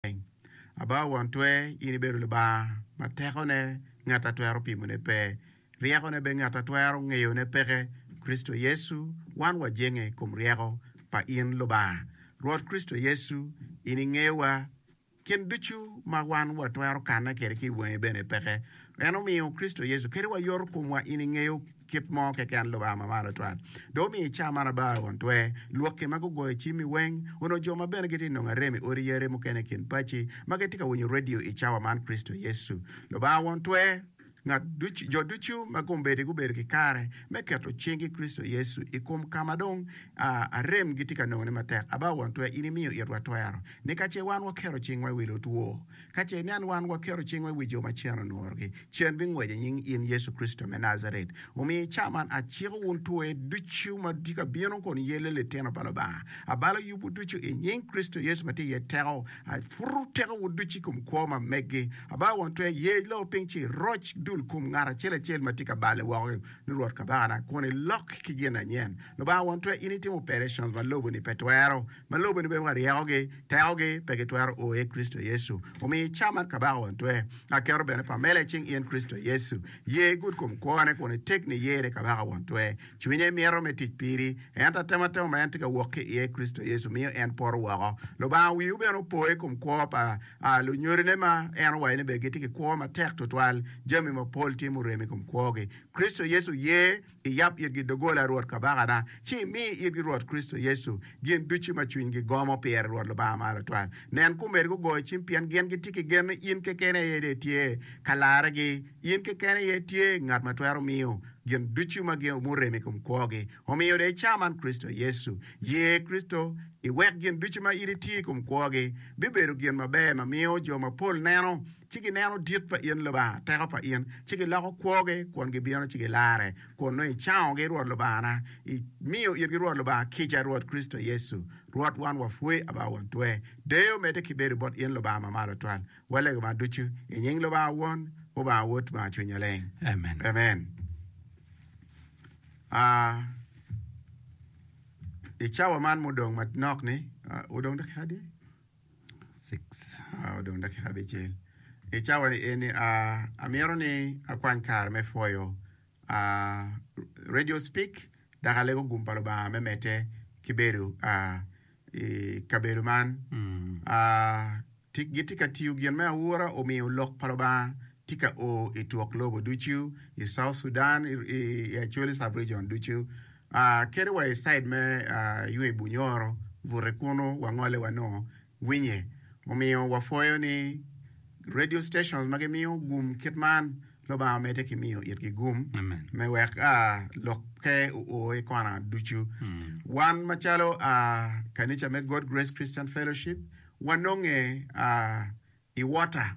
maleng. Aba won twer, in ibedo Lubanga ma tekone ngat a twero pimone pe, ryekone bene ngat a twero ngeyone peke. Kricito Yecu, wan wajenge i kom ryeko pa in Lubanga. Rwot Kricito Yecu, in ingeyowa, gin ducu ma wan watwero kanne kede ki i wangi bene peke. En omiyo Kricito Yecu kadi wayoto komwa, in ingeyo. Kit mo keken Lubanga ma malo twat dong omiyo i cawa man abar i won twe, lwokki ma gugoyo cimmi weng, onongo jo ma bene gitye ka nongo arem i odi yare mukene i kin paci ma gitye ka winyo radio i cawa man, Kricito Yecu, Lubanga won twe, ngat ducu, jo ducu ma kombeddi gubedo ki kare me keto cinggi i Kricito Yecu i kom ka ma dong arem gitye ka nongone matek, abar won twe in imiyo itwa twero ni ka ce wan waketo cingwa i wi lutwo, Ka ce nen wan waketo cingwa i wi jo ma cen onworogi, cen bingweco i nying in Yecu Kricito me Najaret. Omiyo i ca man aciko wun twer ducu ma tye ka bino kun iyelle litino pa Lubanga. Abalo yubwu ducu i nying Kricito Yecu ma tye iye teko. Aputo tekowu ducu i kom kwo ma meggi. Abalo won twer yec loo piny ci iroc dul kom ngat acel acel ma tye ka balle woko-gi, ni Rwot Kabakana, kun ilok ki gin anyen. Lubanga won twer in itimo operetions ma lobo-ni pe twero. Ma lubo-ni bene wa ryekogi, tekogi pe gitwero o i Kricito Yecu. Omiyo i caa mar Kabaka won twe, aketo bene pamela i cing in Kricito Yecu. Ye igud kom kwone kun iteg niye ni Kabaka won twe. Cwinye mito me tic piri, ento atematema ma en tye ka wok ki iye i Kricito Yecu miyo en poto woko. Lubanga wiu bene opo i kom kwo pa lunyodine ma en owaco ni bene gitye ki kwo matek twatwal. Jami mapol tye murem i kom kwogi. Kricito Yecu ye. Iyab itgi doggola Rwot Kabakana, ci imi itgi Rwot Kricito Yecu, gin ducu ma cwinygi gomo pire, Rwot Lubanga Mar Atwal. Nen ku omedigi ogoyo cim, pien gin gitye ki gen ni in keken aye dong itye ka larregi. In keken aye itye Ngat ma twero miyo gin ducu ma gin omurem i kom kwogi. Omiyo dong icaman Kricito Yecu. Ye Kricito, iwek gin ducu ma in itiyo i kom kwogi bibedo gin maber ma miyo jo mapol neno, ci gineno dit pa in Lubanga, teko pa in, ci giloko kwogi kun gibino ci gilarre, kun nongo icangogi, Rwot Lubangana, imiyo itgi Rwot Lubanga kica, Rwot Kricito Yecu Rwot wan wapwoyi aba won twer. Deyo medde ki bedo bot in Lubanga ma malo twal. Walego man ducu i nying Lubanga Won, Lubanga Wod, Lubanga Cwiny Maleng. Amen. Amen. Ah, I cawa man mudong manok-ni, ah, wudong dakika adi? I cawani eni amyero ni akwany kare me pwoyo radio speak dok alego gum pa Lubanga me medde ki bedo i kabedo man gitye ka tiyo gin me aura omiyo lok pa Lubanga tye ka o i twok lobo ducu i South Sudan i Acholi sub region ducu. Kede wa i cid me yung i Bunyoro, bute kunu wangole wanongo winye. Omiyo wapwoyo ni radio stations ma gimiyo gum kit man, Lubanga omedde ki miyo itgi gum me wek lokke oo i kona ducu. Wan macalo kanica me God Grace Christian Fellowship, wanonge i Water.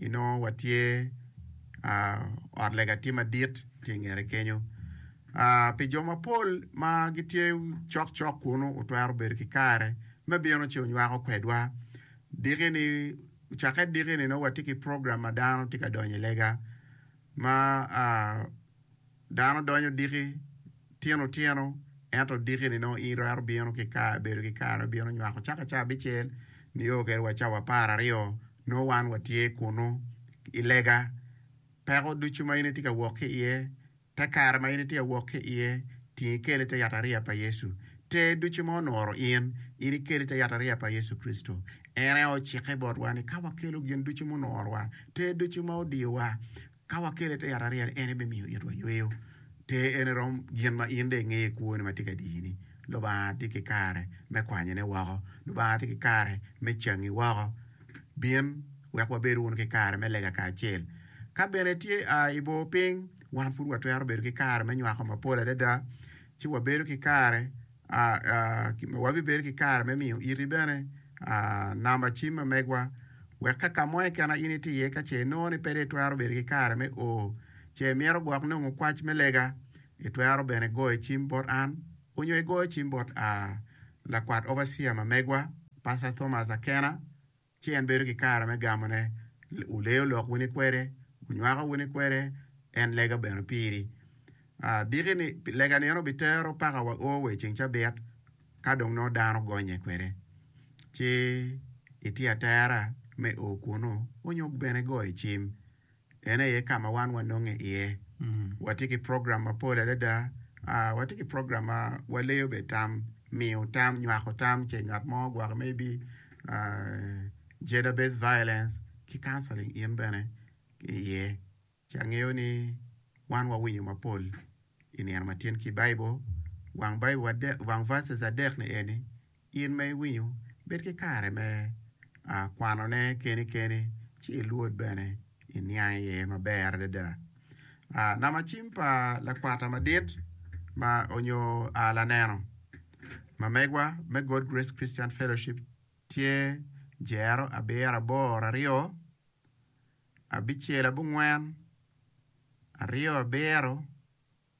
inongo watye ot lega tye madit tye i ngete kenyo. Aa, pi jo mapol ma gitye cokcok kunu otwero bedo ki kare me bino ci onywako kwedwa. Dikini, cakke dikini nongo watye ki program ma dano tye ka donyo i lega ma aa, Dano donyo diki tino tino, ento diki-ni nongo in twero bino ki kare bedo ki kare bino nywako caka cawa abicel nio kede wa cawa apar aryo nongo wan watye kunu i lega. Peko ducu ma in itye ka wok ki iye, te kare ma in itye ka wok ki iye, ting ikele i te yatariya pa Yecu. Ter ducu ma onoro in, in ikele i te yatariya pa Yecu Kricito. En aye ocikke botwa ni ka wakelo gin ducu munorowa, ter ducu ma odiyowa, Ka wakele i te yat ariya-ni, en aye bimiyo itwa yweyo. Ter ene rom gin ma in dong ingeyo i kwoni ma tye ka diyini. Lubanga tye ki kare me kwanyone woko. Lubanga tye ki kare me cangi woko. Bin wek wabed wunu ki kare me lega kacel. Ka bene itye a i bor piny, wan pud watwero bedo ki kare me nywako mapol adada, ci wabedo ki kare Wabibedo ki kare me miyo iti bene namba cim ma megwa wek ka ka mo keken in itye iye ka ce inongo ni pe dong itwero bedo ki kare me o ce imito gwok nongo kwac me lega, itwero bene goyo cim bot an onyo igoyo cim bot lakwat overseer ma megwa, Pastor Thomas Akena. Ci en bedo ki kare me gamone. Wuleyo lok wini kwede, wunywako wini kwede, en lega bene piri. Adiki ni, lega ni en obitero paka wa o wa i ceng cabit, ka dong nongo dano gonye kwede. Ci itye atera me o kunu, onyo bene goyo cim. En aye ka ma wan wanonge iye. Watye ki program mapol adada. Watye ki program ma waleyo bene tam, miyo tam, nywako tam ce ngat mo ogwoki maybe gender based violence ki counselling in bene iye. Ci angeyo ni wan wawinyo mapol i nino ma tyen ki Baibul. Wang Baibul adek, wang verses adek ni eni. In ma iwinyo, bed ki kare me kwanone keni keni, ci ilwod bene, iniang iye maber adada. Namacim pa lakwata madit ma onyo laneno ma megwa me God Grace Christian Fellowship tye Jero abiro aboro aryo abicel abongwen aryo abiro.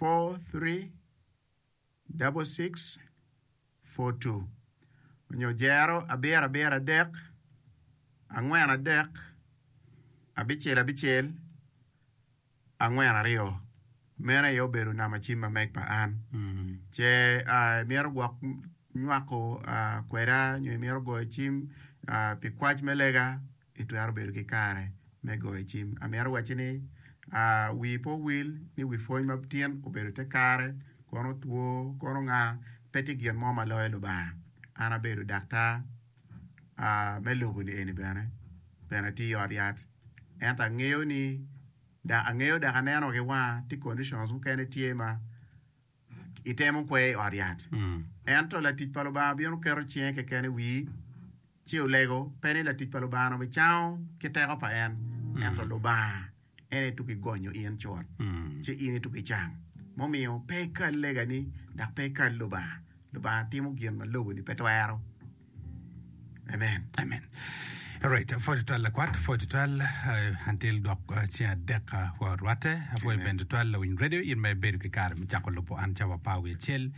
436642 nyo jero abirabira adek angwen adek abicel abicel angwen aryo meno aye obedo namba cim ma meg pa an ce imito gwok nywako kweda nyo imito goyo cim pi kwac me lega itwero bedo ki kare me goyo cim. Amito wacci ni wii pe owil ni wi pwony ma tin obedo te kare, kono two, kono nga, pe tye gin mo ma loyo Lubanga. An abedo daktar me lobo ni eni bene, bene atiyo i ot yat. Ento angeyo ni, angeyo dok aneno ki wanga ti conditions mukene tye ma itemo kwe i ot yat. Ento latic pa Lubanga bino keto cinge keken i wii ci olego, pe ni latic pa Lubanga-nu bicango ki teko pa en, ento Lubanga en aye tuku igonyo in cut, ci in aye tuku icang. Mumiyo pe ikal legani, dok pe ikal Lubanga. Lubanga timo gin ma lobo-ni pe twero. Amen. Amen. Alright, apwoyo twal lakwat, apwoyo twal uh, until dok uh, ceng adek uh, wa rwatte, apwoyo bende twal lawiny radio in ma ibedo ki kare me cako lubo an ca wapa wi acel.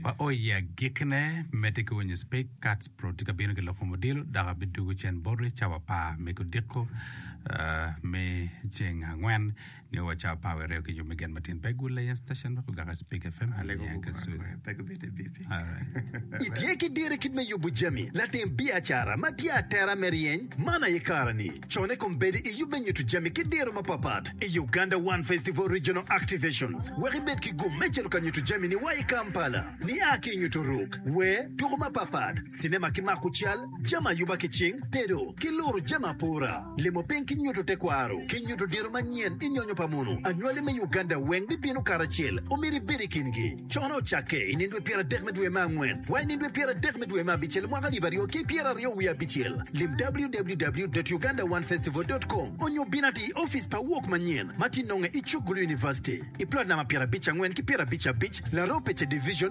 Wa o i agikne medde ki winyo speak cats pro tye ka bino ki loko modilo dok abidugo cen boti ca wapa me kodiko uh, me ceng angwen Ngeyo wa cawa power reo ki jo me gen matin pe gule ya station wek ogaka speaker fm hali niang ka suri. Alright. Itye ki diro i kit me yubo jami latim biacara ma tye atera me ryeny man aye kare-ni. Conne kong bedi i yub me nyutu jami ki diro mapatpat i Uganda One Festival Regional Activations wek ibed ki gum me cito ka nyutu jami-ni wa i Kampala. Nia ki i nyutu ruk, wer, tuku mapatpat, cinema ki mako cal, jami ayuba ki cing, tedo, ki luro jami apora, limo piny ki nyuto tekwaro, ki nyuto diro manyen i nyonyo pa mono. Anywali me Uganda weng bibino karacel, omyero ibed i kingi. Cono ocakke i nino dwe pyera dek me dwe me angwen wa i nino dwe pyera dek me dwe me abicel mwaka alip aryo ki pyera aryo wiye abicel. Lim www.ugandaoneFestival.com onyo bin ati i ofice pa Walk manyen ma tye nonge i Chuk Gulu University i plot namba pyera abic angwen ki pyera abic abic, Laropeche Division,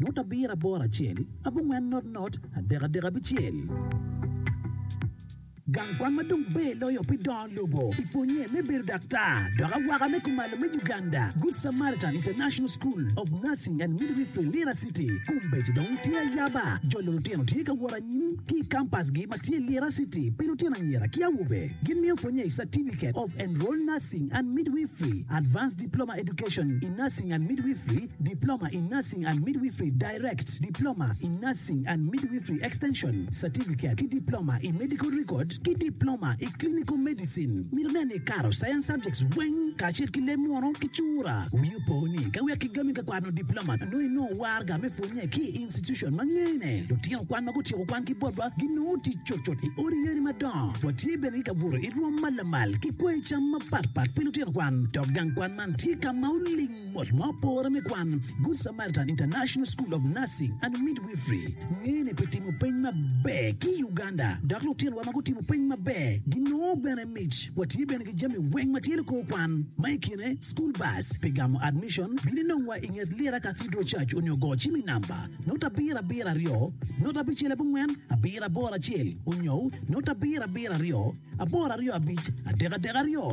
Ngut abiro aboro acel, abongwen not not, adek adek abicel. Gang kwan ma dong ber loyo pi dongo lobo i pwonnye me bedo daktar dok awaka me kumalo me Uganda, Good Samaritan International School of Nursing and Midwifery, Lira City, kombeddi dong tye ayaba. Jolo lutino tye ka wot anyim ki i kampasgi ma tye Lira City pi lutino anyira ki awobe. Gimiyo pwonnye i Certificate of Enrolled Nursing and Midwifery, Advanced Diploma Education in Nursing and Midwifery, Diploma in Nursing and Midwifery, Direct, Diploma in Nursing and Midwifery Extension, Certificate, ki Diploma i Medical Record ki Diploma i Clinical Medicine. Mito nen ni ikato Science subjects weng kacel ki leb munu ki cura. Wii opo ni ka wek kigami ka kwano Diploma nongo inongo warga me pwonye ki i institution ma ngene. Lutino kwan ma gutyeko kwan ki botwa ginongo tic cutcut i odi yeni madongo. Watye bene ki ka buto i rwom ma lamal ki kwoyo cam mapatpat pi lutino kwan dok gang kwan man tye ka ma oling. Mot ma opore me kwan, Good Samaritan International School of Nursing and Midwifery ngene pi timo peny maber ki i Uganda, dok lutinowa ma gutimo peny maber ginongo bene mic. Watye bene ki jami weng ma tye likor kwan, ma i kine school bus. Pi gamo admission, bin inongwa i nget Lira Cathedral Church onyo go cim i namba note abiro abiro aryo note abicel abongwen abiro aboro acel onyo note abiro abiro aryo aboro aryo abic adek adek aryo.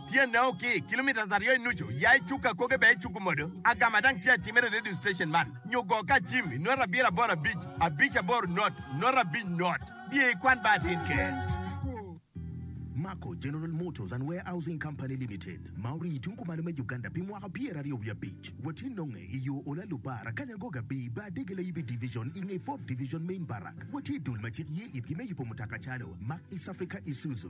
Tyenne o ki kilometres aryo i nucu, ya i cuk akoge bene icuku modo. Agama dang tye atimere i radio station man, nyo go ka acim i nota abiro aboro abic, abic aboro not, not abic not. Biye i kwan ba atin keken. Mako General Motors and Warehousing Company Limited ma orii i tung kumalo me Uganda pi mwaka pyera aryo wiye abic. Watye nonge i yo Ola Lubba, Rakanyago Gabi, Bar Dege Layibi Division i nge Fourth Division Main Barrack. Watye i dul ma cik ye itgi me yubo mutoka calo Mack, East Africa, Isuzu,